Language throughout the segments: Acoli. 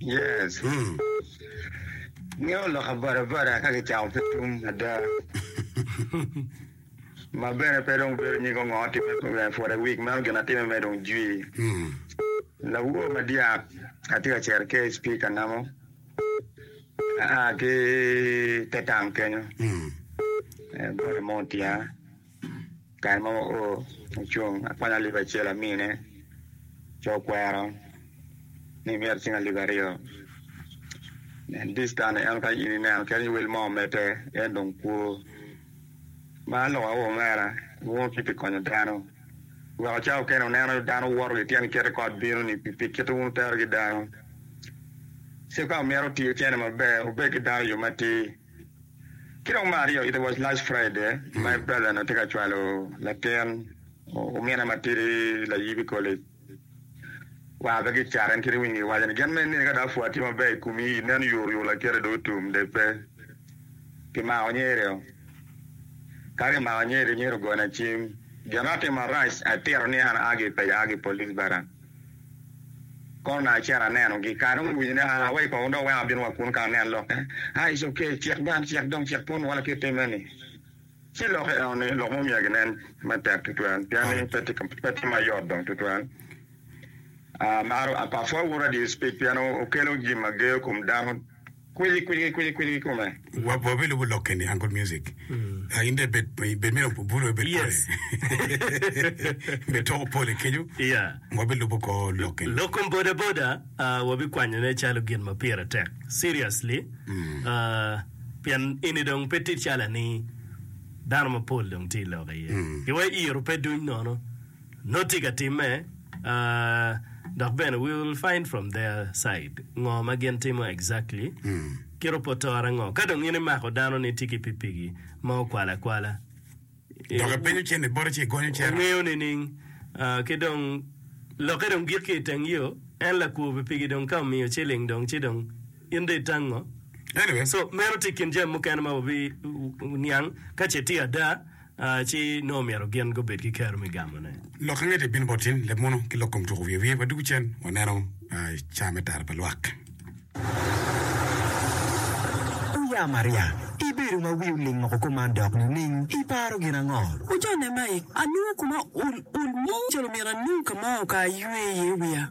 Yes. Ngeyo lok abadabada ka kicako ki tum ada. Ma bene pe dong bedo nyig ongo timme for a week meno gin atimme me dong jwi. Lawowo madyak atye ka cero ki HP kanamo aa ki te tang kenyo. Bwota mo otiya. Kare mo wa oo ocung akwanya alip acel amine ci okwero ni myero icing alip aryo nen this time en ka in ineno kadi wel mo omedde en dong kwo ma lok aye omera nongo ki pi konyo dano weko cawa mukene ineno dano woto ki tyen kit kot bino ni pi kit ma wun wutero ki dano ci ka myero otiyo cene maber obed ki dano i yo matir. Ki dong me aryo, it was last Friday my brother onongo tye ka cwalo latin omine matidi layib i college. War pe ki cat en kit iwinyo gi waco ni gin me nini ka dong apwa tye maber i komi i nen yor yor lakite dong otum de pe ki mako nyeri o. Ka ki mako nyeri nyeri ogona cim. Gin ma atimo arac atito ni an aa gi i paco aa ki police bara. Kona acito anenogi. Kare dong guwinyo ni aa wa i kongo dong wek abin wa kunu ka anen lokke. Aa, it's ok, cik bene, cik dong, cik pwony wa laki itime ni. Ci lok i eno ni, lok mo myero ginen me tek tutwal pien ni pe tye, pe tye ma yot dong tutwal. Aa, apwony wunu adii speech pien okelo jami ma geyo kom dano. kwilgi kwilgi kwilgi kwilgi kome. Wa wa be lubo lokke ni Uncle Music. Ah, in dong ibed ibed me obu- bulo ibed pole. Yes. Ibed toko pole kenyo. Yeah. Wa be lubo ko lokke ni. Lokom boda boda ah, wabikwanyone calo gin ma pire tek. Seriously. Ah, pien eni dong pe tit calo ni dano mapol dong tye i lok aye. Giwa iro pe duny nono. Nongo tye ka timme, dok bene we will find from their side ngo ma gin timo exactly, kit opotore ango ka dong in imako dano ni tye ki pipigi ma okwalo akwala, Dok ipenyo cen ni bote ci igonyo cera. Ongeyo nining? Ki dong lokke dong gik ki iteng yo, en lakwo pipigi dong ka omiyo ciling dong ci dong in dong itang ngo? Anyway. So meno tye ikin jami mukene ma wabi niang ka ce tye ada. Ci nongo myero gin gubed ki kero me gamone. Lok angecel bino bot in, leb mono ki lok kom tuko wiye wiye pa dugu cen. Waneno i ca me tara pa lwak. Wuya Maria, ibedo ma wi oling moko kop man dok nining? Iparo gin ango? Wujone mai, anongo koma ul ul mo calo myero anong ka mo ka aywe iye wiya.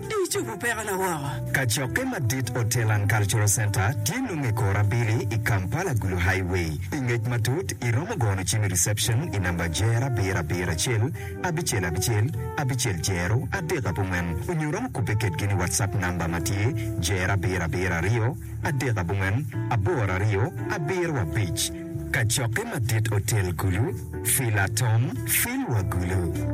Dong icobo pekona woko. Kacokke madit Hotel and Cultural Centre tye nongo i kor abili i Kampala Gulu Highway. I ngec matut, iromo gono cim i reception i namba jero abiro abiro acel, abicel abicel, abicel jero adek abongwen onyo iromo kubbe kedgi ni WhatsApp namba ma tye jero abiro abiro aryo, adek abongwen, aboro aryo, abiro abic. Kacokke madit Hotel Gulu, Fila Tom, Fil wa Gulu.